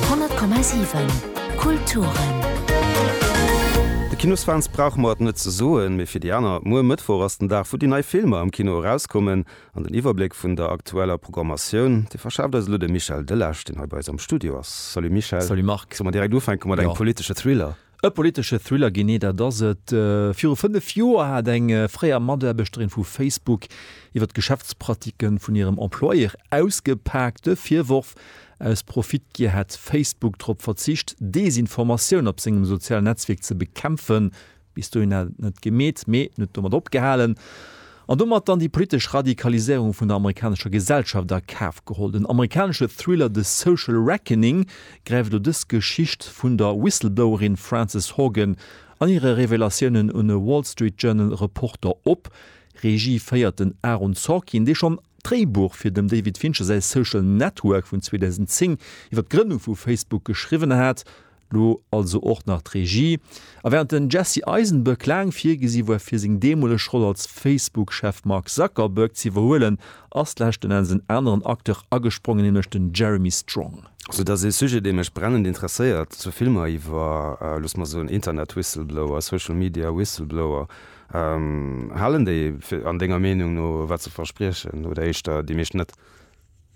100,7 Kulturen. De Kinosfans brauche mer et net ze soen, mee fir déi aner, Muer Mëttwoch ass den Dag, wou déi nei Filmer am Kino erauskommen. An den Iwwerbléck vun der aktueller Programmatioun, dee verschaaft eis elo de Michel Delage, deen hei bei eis am Studio ass. Salut Michel. Salut Marc. Solle mer direkt ufänke mat engem politesche Thriller? E politesche Thriller, genee dat ass et. Viru fënnef Joer hat eng fréier Mataarbechterin vu Facebook iwwer d'Geschäftspratike vun hirem Employeur ausgepaakt. De Virworf, aus Profitgier hätt Facebook drop verzicht, Desinformatioun op sengem sozialen Netzwierk ze bekämpfen. Bis dohin hat et net gemeet, mee net domat opgehalen. An domat dann déi politesch Radikaliséierung vun der amerikanescher Gesellschaft a Kaf geholl. Den amerikanesche Thriller The Social Reckoning gräift elo dës Geschicht vun der Whistleblowerin Frances Haugen an hire Revelatiounen un e Wall Street Journal Reporter op. Regie féiert den Aaron Sorkin, dee schonn d'Dréibuch fir dem David Fincher säi Social Network vun 2010 iwwer d'Grënnung vu Facebook geschriwwen hat. Lo also och nach d'Regie. A während den Jesse Eisenberg laang virgesi war fir seng deemoleg Roll als Facebook-Chef Mark Zuckerberg z'iwwerhuelen, ass leschten Enns en aneren Acteur agesprongen, nämlech den Jeremy Strong. Sou dass ee Sujet dee mech brennend interesséiert, zu Filmer iwwer, looss mer soen, Internet-Whistleblower, Social Media Whistleblower, halen déi an denger Meenung no wat se verspriechen oder éischter déi meescht net?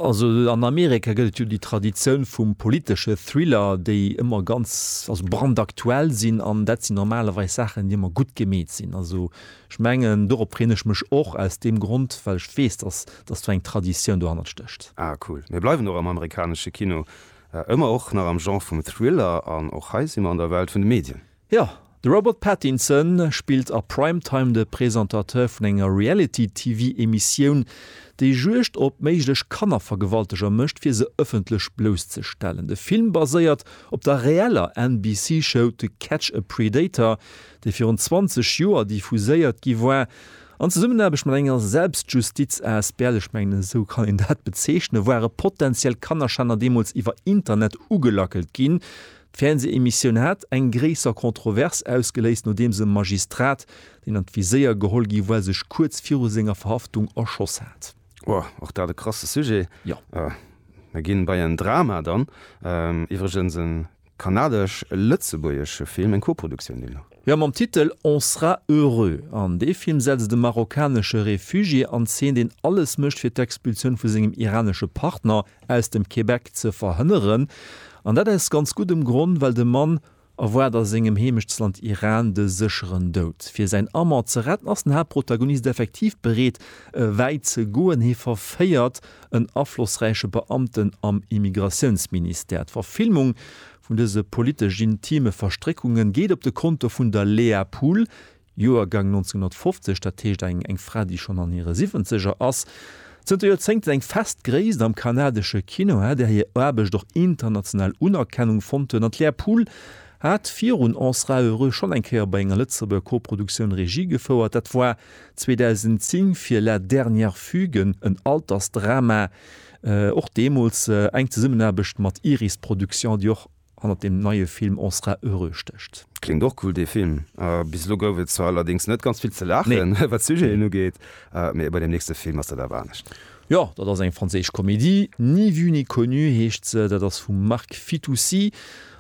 Also an Amerika gëtt et jo déi Traditioun vum politesche Thriller, déi ëmmer ganz, also brandaktuell sinn an dat sinn normalerweis Saachen, déi ëmmer gutt gemeet sinn. Also ech mengen, dorop freeën ech mech och aus deem Grond, well ech weess, dass dass do eng Traditioun dohannert stécht. Ah cool. Mir bleiwen och am amerikanesche Kino, ëmmer och nach am Genre vum Thriller an och hei si mer an der Welt vun de Medien. Jo, de Robert Pattinson spillt a Primetime de Presentateur vun enger Reality-TV-Emissioun, déi Juegd op méiglech Kannervergewalteger mécht, fir se ëffentlech blousszestellen. De Film baséiert op der reeller NBC-Show To Catch a Predator, déi virun 20 Joer diffuséiert gi war, an Zesummenaarbecht mat enger Selbstjustiz-asbl, ech mengen, esou kann een dat bezeechnen, ware potentiell Kannerschänner deemools iwwer Internet ugelackelt ginn, D'Fernsehemissioun hat eng gréisser Kontrovers ausgeléist, nodeems e Magistrat, deen an d'Viséier geholl gi war, sech kuerz viru senger Verhaftung erschoss hat. Wow, och dat e krasse Sujet. Jo. Mir ginn bei en Drama dann. Iwwregens e kanadesch-lëtzebuergesche Film, eng Koproduktioun deemno. Jo, mam Titel On sera heureux. An dee Film setzt e marokkanesche Refugié an Zeen, deen alles mécht fir d'Expulsioun vu sengem iranesche Partner, aus dem Québec ze verhënneren, an dat aus ganz guddem Gronn, well de Mann erwaart a sengem Heemechtsland Iran de sécheren Doud. Fir säin Amant ze retten, ass den Haaptprotagonist effektiv bereet, wäit ze goen, hie verféiert en aflossräiche Beamten am Immigratiounsministère. D'Verfilmung vun dëse politesch-intime Verstréckungen geet op de Konto vun der Léa Pool, Joergang 1950, dat heescht eng eng Fra, déi schonn an hire Siwwenzeger ass. Zënter Joerzéngten eng fest Gréisst am kanadesche Kino, hat är hir Aarbecht och international Unerkennung fonnt huet an d'Lea Pool hat virun On sera heureux schonn eng Kéier bei enger Lëtzebuerger Koproduktioun Regie gefouert. Dat war 2010 fir La dernière fugue, en Altersdrama, och deemools eng Zesummenaarbecht mat Iris Productions, déi och hannert dem neie Film On sera heureux stécht. Kléngt och cool dee Film. Bis elo gouf et zwar allerdéngs net ganz vill ze laachen, wat d'Sujeten ugeet, mee bei dem nächste Film ass dat awer anescht. Jo, dat ass eng franséisch Komedie, Ni vu ni connu heescht se, dat ass vum Marc Fitoussi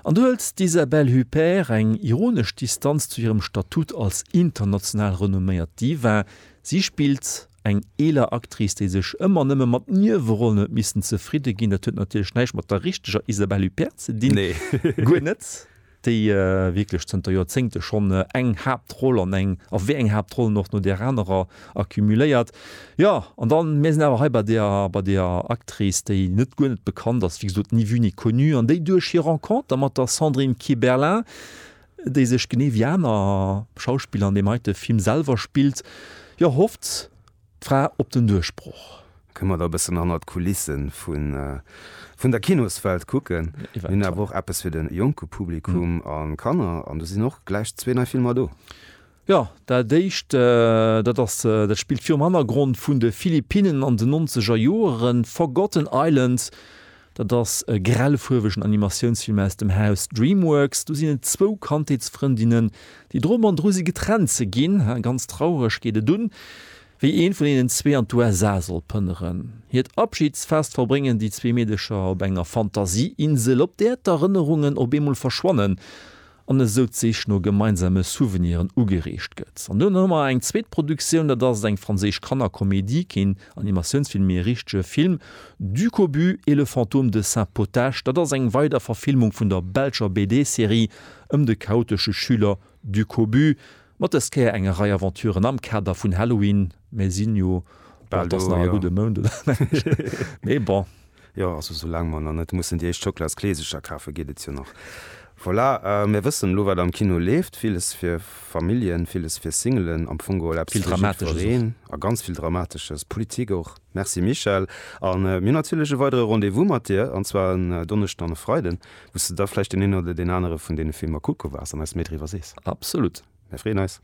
an do hëlt d'Isabelle Huppert eng ironesch Distanz zu hirem Statut als international renomméiert Diva. Si spillt Eng eeler Actrice, déi sech ëmmer nëmme mat Niewerollen huet missen zefridde ginn, dat huet natierlech näischt mat der richteger Isabelle Huppert ze dinn, guer net, déi wierklech zënter Joerzéngte schonn eng Haaptroll an eng, a wéi eng Haaptrollen och, no där anerer accumuléiert. Jo, an da mir sinn awer hei bei där, bei där Actrice, déi net, guer net bekannt ass, wéi gesot, ni vue ni connue, an déi duerch hir Renconter mat der Sandrine Kiberlin déi sech genee wéi aner Schauspiller an deem heite Film selwer spillt, jo hofft d'Fra op den Duerchbroch. Kënne mer da e bëssen hannert d'Kulisse vun der Kinoswelt kucken. Mir hunn awer och eppes fir de jonke Publikum a Kanner an do sinn och gläich zwee nei Filmer do. Jo, dat éischt, dat ass, dat spillt virum Hannergrond vun de Philippinnen an den nonzeger Joeren. Forgotten Islands, dat ass e grellfuerwegen Animatiounsfilm aus dem Haus Dreamworks. Do sinn et zwou Kandheetsfrëndinnen, déi dru man dru si getrennt ze ginn. Ganz traureg geet et un, wéi eent vun hinnen zwee an d'USA soll pënneren. Hiert Abschidsfest verbréngen déi zwee Meedecher op enger Fantasieinsel, op där d'Erënnerungen op eemol verschwannen. an esou d'Sich no gemeinsame Souveniren ugereegt gëtt. An duerno hu mer eng zweet Produktioun, dat ass eng franséisch Kannerkomedie, keen Animatiounsfilm, mee e richtege Film, Du cobu et le fantôme de Saint Potache. Dat ass eng weider Verfilmung vun der belscher BD-Serie ëm de chaotesche Schüler Du cobu, mat dës Kéier enger Rei Aventuren am Kader vun Halloween. Mir sinn jo bal do, jo. Gudde Mount oder mee bon. Jo, also sou laang mer nach net mussen déi éischt Schoklas-Kleesercher kafen, geet et jo nach. Voilà, mir wëssen elo wat am Kino leeft, villes fir Familljen, villes fir Singelen, am Fong geholl eppes fir jiddwereen a ganz vill Dramatesches, Politik och. Merci Michèle a mir hunn natierlech e weidere Rendez-vous mat dir an zwar en Donneschden an e Freiden, wou s de da vläicht deen een oder deen anere vun deene Filmer kucke waars an eis méi driwwer sees. Absolut. Mir freeën eis.